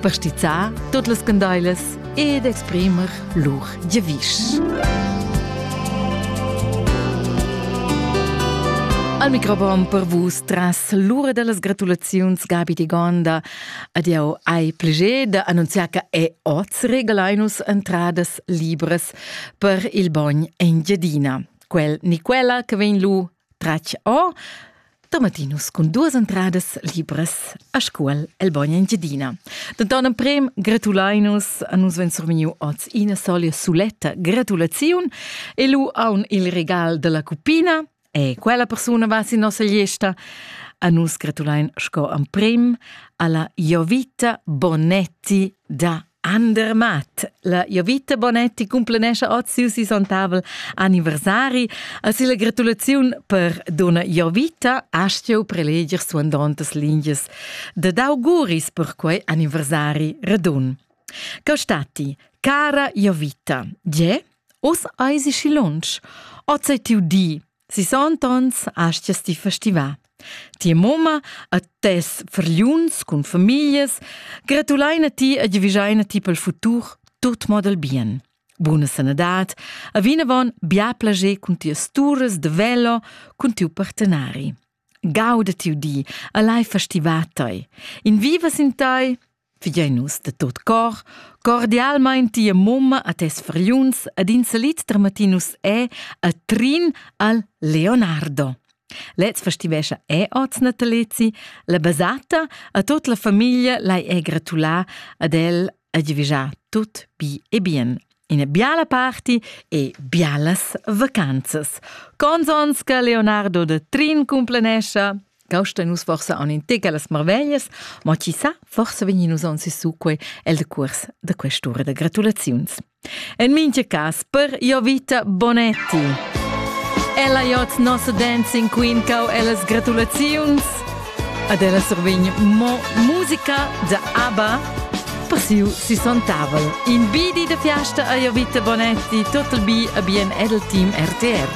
per stizzar tut las candailas ed exprimer lur giavisch. Al microfon per vus tras l'ura da las gratulaziuns Gabi di Gonda ad jau hai pleger da annunziar che è oz regalainus entradas libras per il bogn Engiadina. Quel ni quella che vegn lu Tratg or Tomatinus cun duas entradas libras a scuol el Bogn Engiadina. Da donna Prem gratulainus a nus ven surmeniu oz ina solia suletta gratulaziun e lu aun il regal della cupina e quella persuna va sin nossa gliesta. A nus gratulain sco am Prem alla Jovita Bonetti da Andermatt, la Jovita Bonetti cumplenescha oz siu sisontavel anniversari a silla gratulaziun per donna Jovita astgeu preleger suandontas lingias da d'auguris per quei anniversari radun. Cau stati, cara Jovita, ge, os eisi schi lunsch, oz ei tiu di, Sis onns astgas ti festivar. Tia mamma a tes fargliuns cun famiglias gratuleina ti e giavischeina ti pel futur tut mod al bien. Buna sanadad, a vinavon bia plager cun tias turas de velo cun tiu partenari. Gauda tiu di, a lai festivar tei. In vivas in tei, Figein nus de tot cor cordialmein tia mumma a tes friuns ed in salit dramatinus è a Trin al Leonardo. Lez festivescha è oz Natalezi, la basata a tot la famiglia lai è gratulà ad el a givigià tut bi e bien. Ina biala party e bialas vacanzas. Consons che Leonardo de Trin cumplanescha Causta nus forsa on in tega las marveglias, ma chi sa, forsa vegnin nus on sissu quei el de curs da quest'ura da gratulaziuns. En mincha cas, per io vita Bonetti! Ella jot nossa Dancing Queen cau ellas gratulaziuns. Ad ella survegn mo musica da ABBA per siu sisontavel. In bidi de fiasta a Jovita Bonetti, total bi a bien edel team RTR.